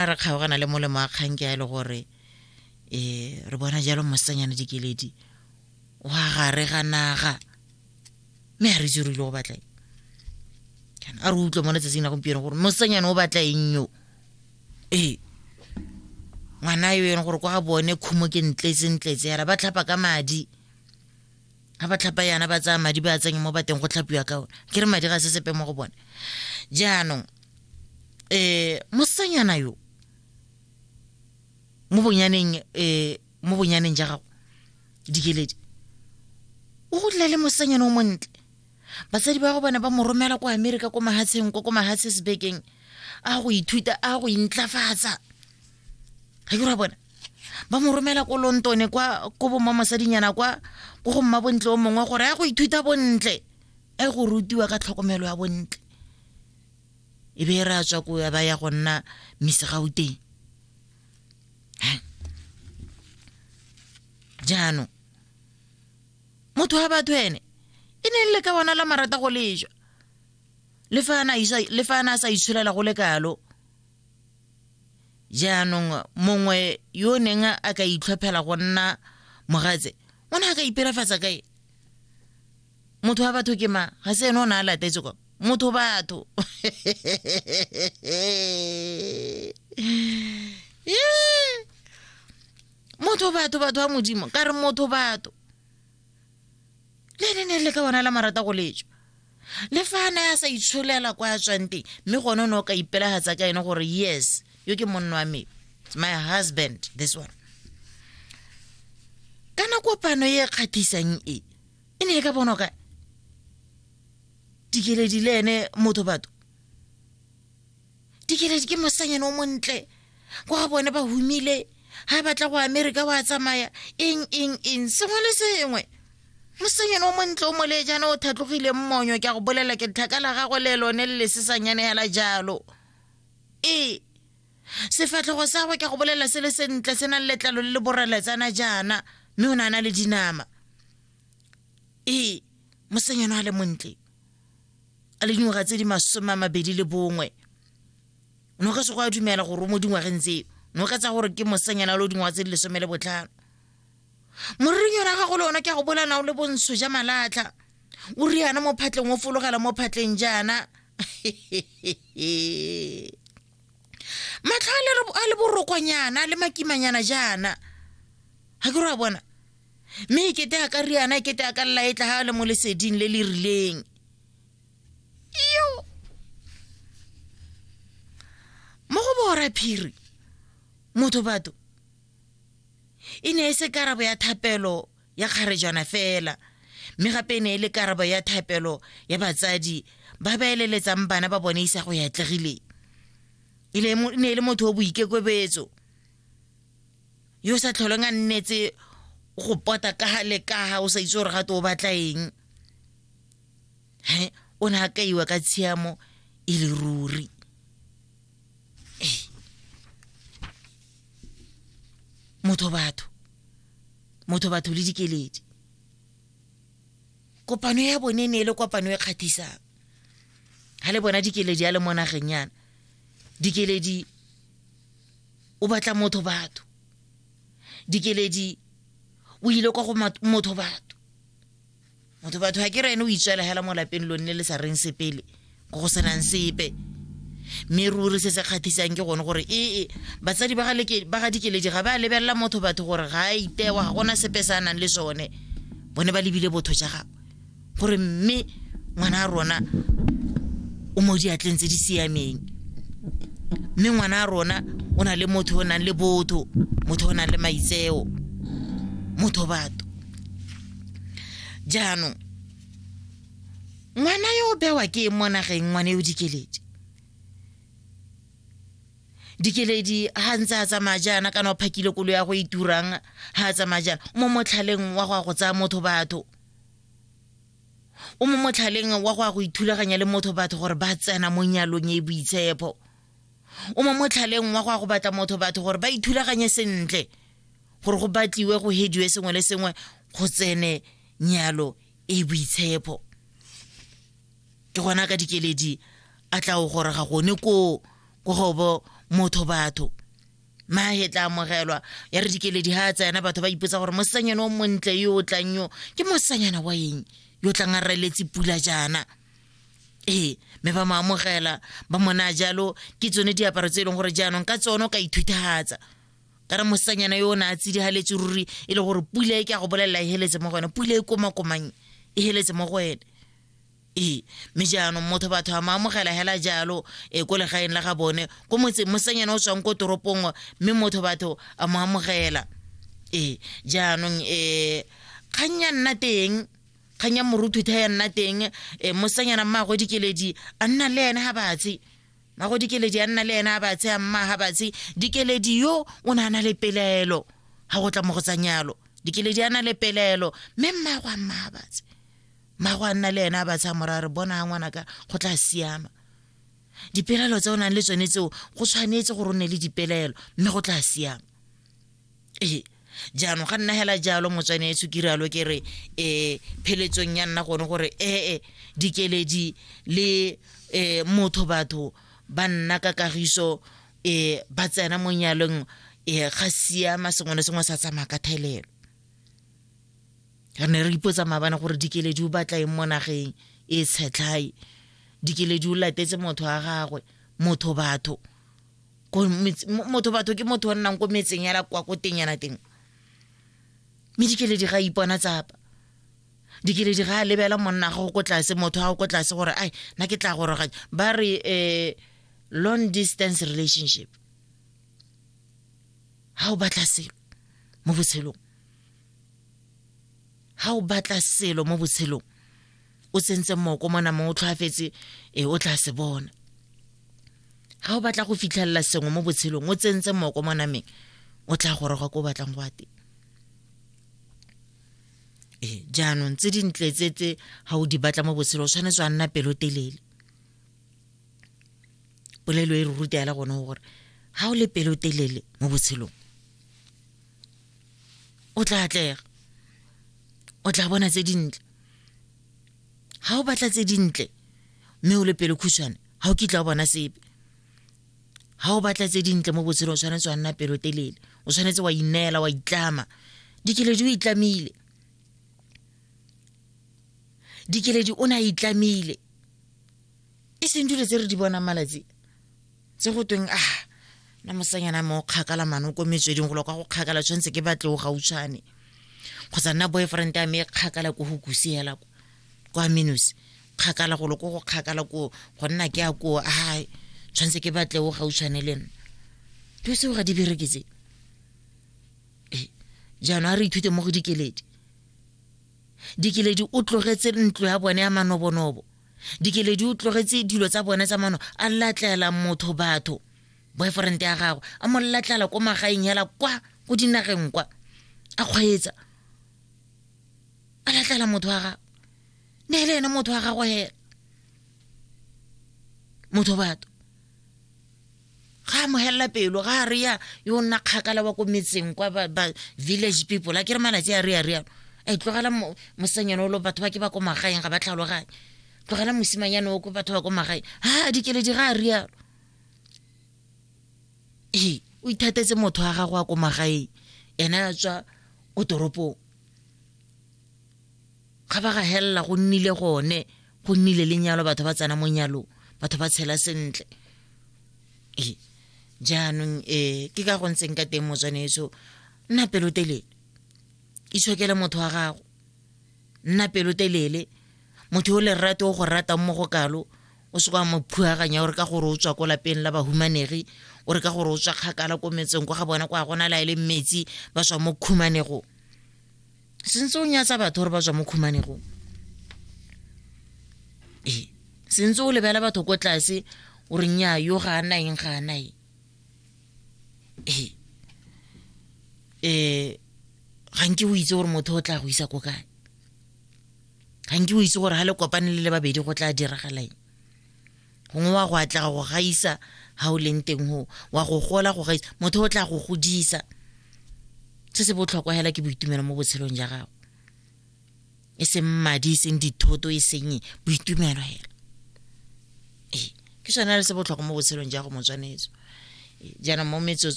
a re kgaogana le molemo a kgang ke a e le gore um re bona jalo mosanyane dikeledi wa gare ga naga mme a re itse rile go batla kana a re utlwa mo letsatsing la gompieno gore mosanyane o batla eng yo ee ngwana yo e leng gore kwa bone khumo ke ntletsentletse yara ba tlhapa ka madi ga ba tlhapa yana ba tsaya madi ba tsenya mo bateng go tlhapiwa ka one ke re madi ga se sepe mo go bone jaanong eh mosanyana yo mo bonyaneng eh mo bonyaneng ja gago dikeledi o godile le mosanyana o montle batsadi ba go bana ba mo romela kwa amerika ko mahatsheng ko ko mahatshe sebekeng a go ithuta a go intlafatsa ga ke ra bona ba mo romela ko lontone kwa ko bomma mosadinyana kwa ko go mma bontle o mongwe gore a go ithuta bontle a go rutiwa ka tlhokomelo ya bontle e be e re a tswa ko ya ba ya go nna misegauteng jaanong motho wa batho ene e ne le ka bona la marata go lejwa le fa a na a sa itsholela go le kalo jaanong mongwe yo o neng a ka itlhophela go nna mogatse o ne a ka ipelafatsa kae motho wa batho ke mang ga se ene o ne a latetse kwa motho batho motho batho batho wa modimo ka re motho batho le ne ne le ka bona la marata go letswa le fa ne a sa itsholela kwa a tswang teng mme gone o ne o ka ipelagatsa ka ene gore yes yo ke monna wa me It's my husband this one kana kopano e e kgatlhisang e e ne e ka bonwa kae dikeledi le ene motho batho dikeledi ke mosanyane o montle ko ga bone ba humile ga batla go amerika wa tsamaya eng eng eng sengwe le sengwe mosanyane o montle o mole jaana o thatlogile mmonyo ke a go bolela ke tlhaka la gagwe le lone le lesesanyane hela jalo ee sefatlhogo sa gwe ke go bolela se le sentle se nang letlalo le le boreletsana jaana mme o ne a na le dinama ee mosenyano a le montle a le dingwaga tse di masome a mabedi le bongwe o ne o ka se go a dumela gore o mo dingwageng tseo ne o ka tsa gore ke mosenyana le o dingwaga tse di lesome le botlhano morering yona gago le ona ke a go bolana o le bontsho ja malatlha o riana mo phatleng o fologela mo phatleng jaana matlho a le- a le borokwanyana a le makimanyana jaana ga ke re wa bona mme e kete a ka riana e kete a ka lela e tla ga a le mo leseding le le rileng yo mo go bora phiri motho batho e ne e se karabo ya thapelo ya kgarejana fela mme gape e ne e le karabo ya thapelo ya batsadi ba ba eleletsang bana ba bone isago ya atlegileng e ne e le motho o boikekobetso yo o sa tlholeng a nnetse go pota kaga le kaga o sa itse gore gato o batla eng he o ne a kaiwa ka tshiamo e le ruri motho batho motho batho le dikeledi kopano ya bone ne e le kopano e kgatlhisang ga le bona dikeledi ya le mo nageng yana dikeledi o batla motho batho dikeledi o ile kwa go motho batho motho batho ga ke re ene o itswela hela mo lapeng lo nne le sa reng sepele ko go senang sepe mme ruri se se kgatlhisang ke gone gore ee e, batsadi ba ga dikeledi ga ba lebelela motho batho gore ga a itewa ga gona sepe se a nang le sone bone ba lebile botho ja gagwe gore mme ngwana a rona o mo diatleng tse di siameng mme ngwana a rona o na le motho o nang le botho motho o nang le maitseo motho batho jaanong ngwana yo o bewa ke mo nageng ngwane yo dikeledi dikeledi ha ntse a tsamaya jaana kana o phakile kolo ya go iturang e ha a tsamaya jaana mo motlhaleng wa go ya go tsaya motho batho o mo motlhaleng wa go ya go ithulaganya le motho batho gore ba tsena mo nyalong e boitshepo o mo motlhaleng wa go ya go batla motho batho gore ba ithulaganye sentle gore go batliwe go hediwe sengwe le sengwe go tsene nyalo e boitshepo ke gona ka dikeledi a tla o gore ga gone ko ko gobo motho batho mahe tla amogelwa ya re dikeledi ga a tsena batho ba ipotsa gore mosanyana o montle yo o tlang yo ke mosanyana wa eng yo tlang a reletse pula jaana ee mme ba mo amogela ba mona jalo ke tsone diaparo tse e leng gore jaanong ka tsone o ka ithutahatsa ka re mosanyana yo o ne a tsidigaletse ruri e le gore pula e ke a go bolelela e heletse mo go wena pula e komakomang e heletse mo go wena ee mme jaanong motho batho a mo amogela hela jalo e ko legaeng la ga bone ko motseng mosanyana o tswang ko toropong mme motho batho a mo amogela ee jaanong um kgang ya nna teng kgang ya moruthutha ya nna teng um eh, mosanyana mmago dikeledi a nna le ene ga batse mago dikeledi a nna le ene a batse a mma ga batse dikeledi yo o ne a na le pelaelo ga go tla mo go tsanyalo dikeledi a na le pelaelo mme mmago a mma ga batse mmago a nna le ene a batse a mora re bona ga ngwana ka go tla siama dipelaelo tse o nang le tsone tseo go tshwanetse gore o ne le dipelaelo mme go tla siama ee jaanong ga nna hela jalo motswane e tshukire alo ke re um pheletsong ya nna gone gore ee dikeledi le um motho batho ba nna ka kagiso um ba tsena mo nyalong um ga siama sengwe le sengwe sa tsamaya ka thelelo re ne re ipotsa maabane gore dikeledi o batla eng mo nageng e tshetlhae dikeledi o latetse motho wa gagwe motho batho ko metse- mo- motho batho ke motho o nnang ko metseng yana kwa ko teng yana teng mme dikeledi ga a ipona tsapa dikeledi ga a lebela monna gago ko tlase motho gago ko tlase gore ai na ke tla goroganya ba re um long distance relationship ga o batla selo mo botshelong ga o batla selo mo botshelong o tsentse moko mo namong o tlhoafetse e o tla se bona ga o batla go fitlhelela sengwe mo botshelong o tsentse moko mo nameng o tla goroga ko o batlang go ateng ee jaanong tse dintle tse tse ga o di batla mo botshelo o tshwanetse wa nna pelotelele polelo e re ruta ya le gone gore ga o le pelotelele mo botshelong o tla atlega o tla bona tse dintle ga o batla tse dintle mme o le pelo khutshwane ga o kitla o bona sepe ga o batla tse dintle mo botshelong o tshwanetse wa nna pelo telele o tshwanetse wa ineela wa itlama dikeledi o itlamile dikeledi o ne a itlamile e seng dilo tse re di bonang malatsi tse go tweng a ah, na mosanyana mo kgakala mano ko metsweding go lokwa go kgakala tshwanetse ke batle o gautshwane kgotsa nna boyfriend ya me e kgakala ko go kusiela kwa minus kgakala go lokwa go kgakala ko go nna ke a ko a ah, tshwanetse ke batle o gautshwane le nna dilo tseo ga di bereketse ee jaanong a re ithute mo go dikeledi dikeledi o tlogetse ntlo ya bone ya manobonobo dikeledi o tlogetse dilo tsa bone tsa mano a latlela motho batho boyfriend ya gagwe a mo latlela ko magaeng hela kwa ko dinageng kwa a kgweetsa a latlela motho wa gagwe ne e le ene motho wa gagwe hela motho batho ga amogelela pelo ga a reya yo nna kgakala wa ko metseng kwa ba village people a ke re malatsi a reya reyalo e tlogela mosenyane olo batho ba ke ba ko magaeng ga ba tlhaloganye tlogela mosimanyane o ko batho ba ko magaeng ha dikeledi ga a reyalo ee o ithatetse motho wa gago a ko magaeng ene a tswa ko toropong ga ba ga helela go nnile gone go nnile lenyalo batho ba tsena mo nyalong batho ba tshela sentle ee jaanong um ke ka go ntseng ka teng motswaneso nna pelotelele itshokele motho wa gago nna pelotelele motho o lerate o go ratang mo go kalo o se kwa mo phuaganya o re ka gore o tswa ko lapeng la bahumanegi o re ka gore o tswa kgakala ko metseng kwa ga bona kwa gona la e le metsi ba tswa mo khumanego sentse o nyatsa batho gore ba tswa mo khumanegong ee sentse o lebela batho ko tlase o re nya yo ga a naeng ga a naeng ee um ga nke o itse gore motho o tla go isa ko kae ga nke o itse gore ga le kopane le le babedi go tla diragalaeng gongwe wa go atlega go gaisa ga o leng teng go wa go gola go gaisa motho o tla go godisa se se botlhokwa hela ke boitumelo mo botshelong ja gago e seng madi e seng dithoto e seng boitumelo hela ee ke sone le se botlhokwa mo botshelong ja go motswanetso jaanong mo metsotso